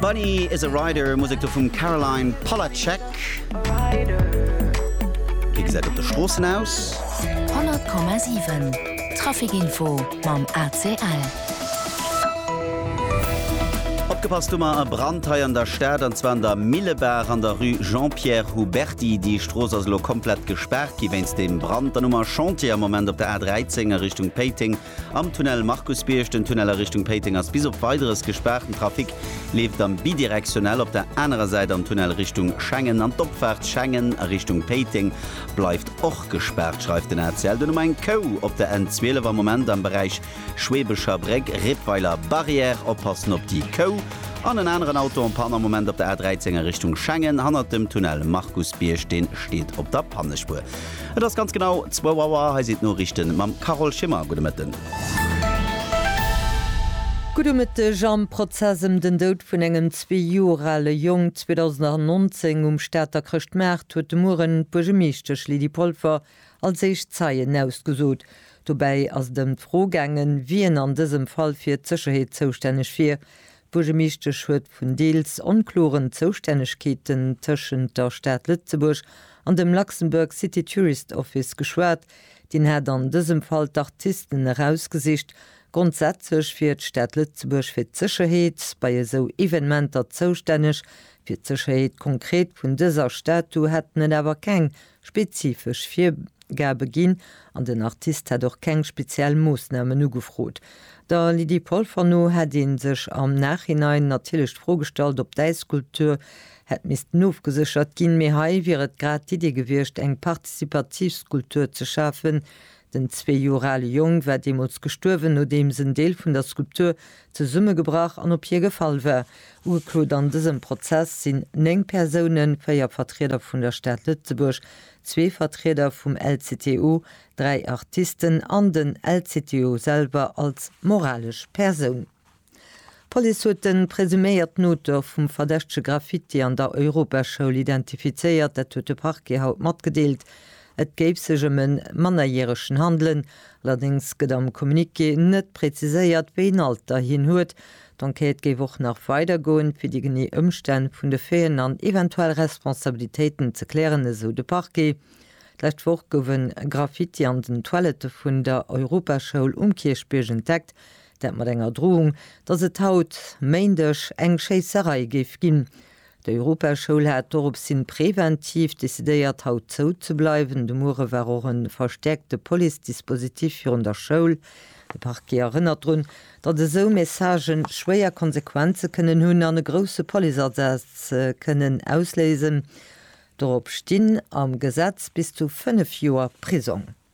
Bunny is a Rider, Musek do vum Caroline Polacek. Wéi gesäit op de Stroossen aus? 100,7 Trafikinfo mam ACL. Opgepasst hu mer e Brand hei an der Stad, an zwar an der Millebaach an der Rue Jean-Pierre Huberty. Déi Strooss ass elo komplett gespaart gi wéinst deem Brand. Dann hu mer Chantier am Moment op der A13 a Richtung Péiteng. Am Tunnel Markusbierg, den Tunnel a Richtung Péiteng ass bis op Weideres gespaart. Den Trafic leeft am Bidirektionnel op der anerer Säit am Tunnel Richtung Schengen an d'Opfaart Schengen a Richtung Péiteng bleift och gespaart, schreift den ACL. Duerno eng Kou op der N 12 am Moment am Beräich Schweebecher Bréck, Rippweiler Barrière. Oppassen op déi Kou an en aneren Auto en Panne am Moment op der A 13 a Richtung Schengen hannert dem Tunnel Markusbierg, dee steet op der Pannespuer. Et ass ganz genau zwou Auer, hei sinn d'Noriichten mam Carole Schimmer. Gudde Mëtten. Gudde Mëtteg. Am Prozess ëm den Doud vun engem zwee Joer ale Jong 2019 um Stater Chrëschtmaart huet de Mueren d'Buergemeeschtesch Lydie Polfer als éischt Zeien ausgesot. Dobäi ass et ëm d'Fro gaangen, wien an dësem Fall fir d'Sécherheet zoustänneg wier. D'Buergermeeschtesch huet vun deels onkloren Zoustännegkeeten tëschent der Stad Lëtzebuerg an dem Luxembourg City Tourist Office geschwat. Deen hat an dësem Fall d'Artisten erausgesicht. Grondsätzlech wier d'Stad Lëtzebuerg fir d'Sécherheet bei esou Evenementer zoustänneg. Fir d'Sécherheet konkret vun dëser Statu hätten et awer keng spezifesch Virgabe ginn an den Artist hätt och keng speziell Moossnamen ugefrot. Der Lydie Polfer no hätt ee sech am Nachhinein natierlech d'Fro gestallt, ob d'Äisskulptur hätt missten ofgeséchert ginn, mee hei wier et grad d'Iddi gewiescht, eng partizipativ Skulptur ze schafen. Den zwee Joer ale Jong war deemools gestuerwen, nodeems en Deel vun der Skulptur zesummegebrach an op hie gefall war. Ugeklot an dësem Prozess sinn néng Persounen, véier Vertrieder vun der Stad Lëtzebuerg, zwee Vertrieder vum LCTO, dräi Artisten an den LCTO selwer als moralesch Persoun. D'Police huet de presuméierten Auteur vum verdächtege Graffiti an der Europaschoul identifizéiert, dat huet de Parquet haut matgedeelt. Et géif sech ëm e Mannerjäreschen handelen. Allerdéngs gëtt am Communiqué net präziséiert, wéi en Alter hien huet. D'Enquête géif och nach weider goen, fir déi genee Ëmstänn vun de Faiten an eventuell Responsabilitéiten ze klären, esou de Parquet. D'lescht Woch gouf e Graffiti an den Toilette vun der Europaschoul um Kierchbierg entdeckt, dat mat enger Drohung, datt et haut, Méindeg, eng Schéisserei géif ginn. D'Europaschoul hat dorops hin präventiv decidéiert haut zou ze bleiwen. De Muere war och e verstäerkte Police-Dispositif virun der Schoul. De Parquet erënnert drun, datt esou Messagë schwéier Konsequenze kënnen hunn an e grousse Policeasaz kënnen ausléisen. Dorop stinn am Gesetz bis zu 5 Joer Prisong.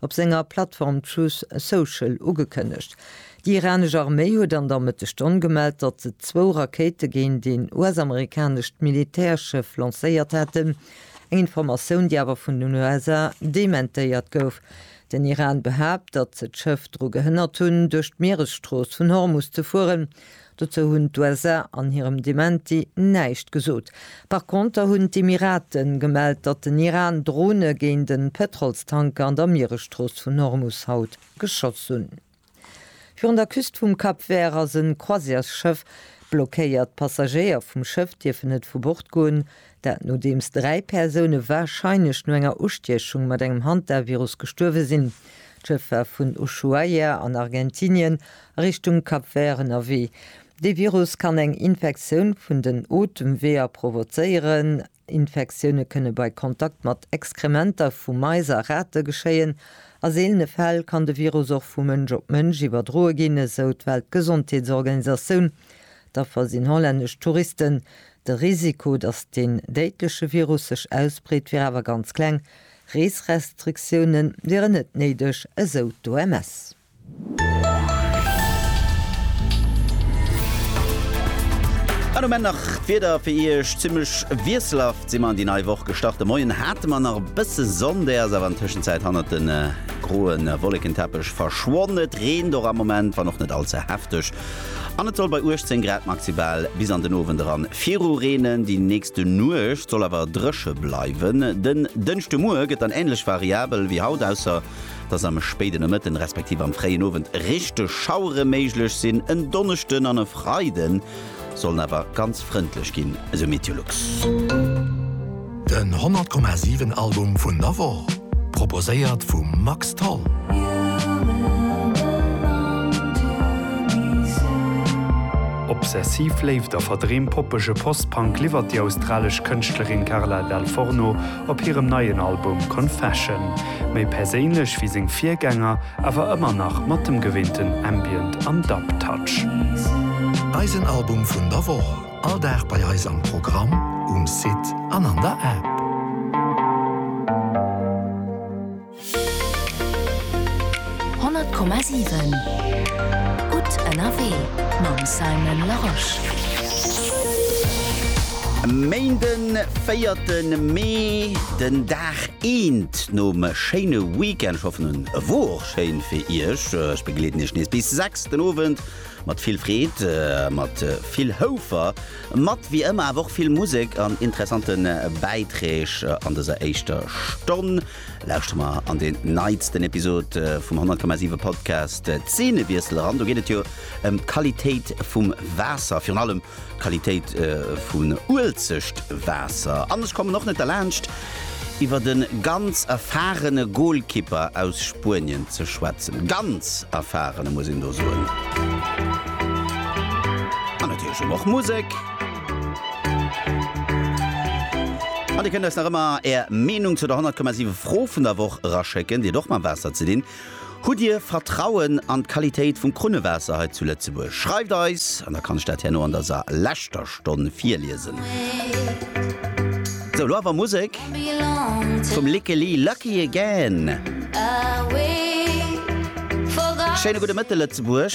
op senger Plattform Truth Social ugekënnegt. Déi iranesch Arméi huet an der Mëttesstonn gemellt, datt se zwou Rakéite géint een US-amerikanescht Militärschëff lancéiert hätten, eng Informatioun, déi awer vun den USA dementéiert gouf. Den Iran behaapt, datt se d'Schëff dru gehënnert hunn, duerch d'Mieresstrooss vun Hormus ze fueren, Dozou hunn d'USA an hirem Dementi näischt gesot. Par Konter hunn d'Emiraten gemellt, datt den Iran Drone géint e Pëtrolstanker an der Mieresstrooss vun Hormus haut geschoss hunn. Virun der Küst vum Cap Vert ass e Croisièresschëff blockéiert. D'Passagéier vum Schëff dierfen net vu Bord goen, Dat nodeems dräi Persoune warscheinlech no enger Ustiechung mat engem Hantavirus gestuerwe sinn. D'Schëff war vun Ushuaia an Argentinien a Richtung Cap Vert ënnerwee. Dee Virus kann eng Infektioun vun den Otemweeër provozéieren. Infektioune kënne bei Kontakt mat Exkrementer vu Mais a Rate geschéien. A seelene Fäll kann de Virus och vu Mënsch op Mënsch iwwerdroe ginn, esou d'Weltgesondheetsorganisatioun. D'Affer sinn hollännesch Touristen. De Risiko, datt deen déidleche Virus sech ausbreet, wier awer ganz kleng. Reesrestriktioune wieren net néideg, esou d'OMS. An um Enn nach d'Wieder fir Iech, Zimmlech wiesselhaft si mer an déi nei Woch gestart. De Moien hate mer nach e bësse Sonn, déi ass awer an Tëschenzäit hannert de groe Wollekenteppech verschwonn. Et reent och am Moment, wann och net all ze hefteg. An et soll bei 18 Grad maxibal bis an den Owend eran viru reenen. Déi nächste Nuecht soll awer dréche bleiwen. Den Dënschdemuer gëtt dann änlech variabel wéi haut, ausser dass am spéiden Nomëtten, respektiv am fréien Owend richteg Schauere méiglech sinn. En Donneschden an e Freide sollen awer ganz frëndlech ginn, esou Meteolux. Den 100,7 Album vun der Woch, proposéiert vum Max Tholl. Obsessiv Léift a verdreem poppege Post-Punk liwwert déi australesch Kënschtlerin Carla Dal Forno op hirem neien Album Confession. Méi perséinlech wéi seng Virgänger, awer ëmmer nach mat dem gewinnten Ambient an Dub-Touch. Eisen Album vun der Woch. All Dag bei eis am Programm, um Site an an der App. Honnert Komma siwen Gutt ënnerwee mam Simon Larosche. Méinden, véierten Mee, den Dag eent nom schéine Weekend. Ech hoffen en wor och schéin fir Iech. Ech begleeden Iech nees bis 6 den Owend. Mat vill Freed a mat vill Houfer mat, wéi ëmmer awer och vill Musek an interessante Bäiträg an dëser éischter Stonn lauschtere mer an deen neitsten Episod vum 100,7 Podcast Zeenewiessel eran. Do geet et jo ëm d'Qualitéit vum Waasser, virun allem D'Qualitéit vun Uelzecht Waasser. An ech kommen och net derlaanscht iwwert e ganz erfahrene Goalkipper aus Spuenien ze schwätzen. Ganz erfahrene muss een do soen. An natierlech hu mer och Musek. An dir kënnt eis nach ëmmer är Meenung zu der 100,7 Fro vun der Woch eraschécken. Déi huet och mam Waasser ze dinn. Hutt Dir Vertrauen an d'Qualitéit vum Krunnewaasser hei zu Lëtzebuerg? Schreift eis an da kann ech dat herno an der sa leschter Stonn virliesen. Sou, lo awer Musek vum Lickeli Lucky Again. Schéine gudde Mëtte Lëtzebuerg.